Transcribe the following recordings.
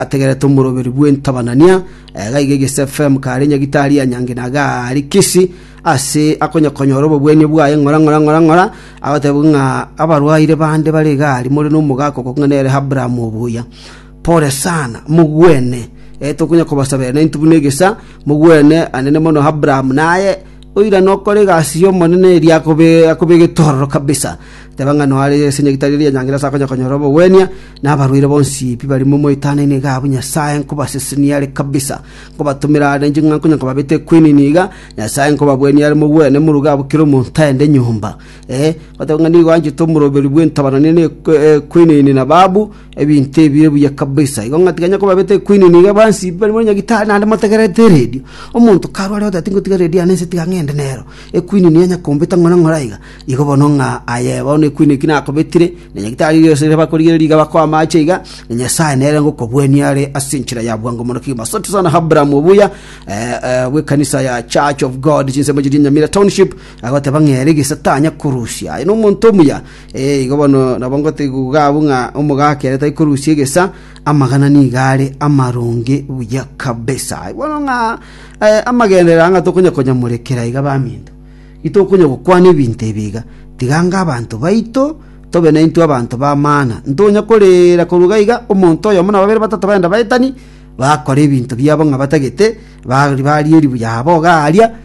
ategerete omoroberi bw'entabanania, egaiga egese FM kare nyagitari ya nyangi na gari kisi, ase akonye konyora obobwenia bwaye ng'ora ng'ora ng'ora ng'ora, agoteba ng'a abarwaire bande bare igari more nomogaka okong'a nere Abraham obuya. Pore sana, mogwene. Eh, tokonya kobasabera naintwe buna egesa, mogwene anene mono Abraham naye, Oirane okore egasi y'Omonene eria akobe getororo kabisa. Teba ng'a noare ase enyagitari eria enyangereru ase akonya konyora obogwenia, na abarwaire bonsi pi bare momoetananie iga abwo Nyasae nkobasesenia are kabisa. Nkobatomera are inche ng'a nkonya nkobabete ekwinini iga, Nyasae nkobabwenia are mogwene moruge abwo kera omonto aende nyomba. Ee, goteba ng'a nigo anchete omoroberi bw'entabanani na ekwinini na babu, Ebinto ebio ebuya kabisa. Igo ng'a tikanya koba bete Queen niga bansi bari muri nyagitari naende motegerete radio. Omonto karware oteba tingotiga radio yane nse tiga ng'ende nero. E Queen niga enya kombeta ng'ore ng'ore aiga. Igo bono ng'a aye bono e Queen eki nakobetire na nyagitari erio ase bakorigereria iga bakoa amache iga na Nyasae nere ngokobuania are ase enchera ya bwango mono kegima. Asante sana Abraham Obuya eh, eh, bw'ekanisa ya Church of God chinsemo chiria Nyamira Township agoteba ng'a ere gese tanya korusia. Aye nomonto omuya Ee, igo bono nabo ngoteguga abwo ng'a omogaka ere taikorusia egesa, amagana nigo are amaronge buya kabisa. Bono ng'a eh, amagenderera ng'a tokonya konyamorekera iga baminto, itokonya gokwana ebinto ebi iga, tiganga abanto baito tobe naintwe abanto b'amana. Ntonya korera korwa iga iga, omonto oyomo na babere batato baenda baetani, bakora ebinto biabo ng'a batagete, ba- baria eribuya abo iga aaria,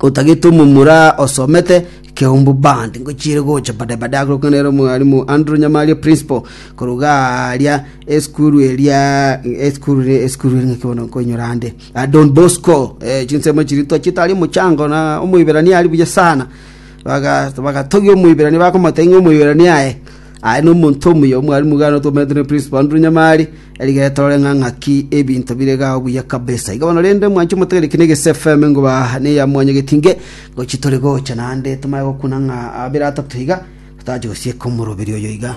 otagete omomura osomete Keumbu Band ngochire gocha bada bada agokana nere omwalimu Andrew Nyamaria principal koruga aria eskuru eria eskuru ri- eskuru eri ng'aki bono nkoinyora ande Ah, Don Bosco eh, chinsemo chiri twachete ari omochango na omoiberania ari buya sana baga bagatogia omoiberania bakomotebia ng'a omoiberania aye aye nomonto omuya omwalimu iga notwomoretwe ne principal Andrew Nyamari Erigeto rore ng'a ng'aki ebinto bire gao buya kabisa. Iga bono rende mwanche motegere ki n'egese FM ngoba neya mwanya getinge ngo chitore gocha naende tomanye gokuna ng'a abere atato iga totache gosieka omoroberi oyo iga.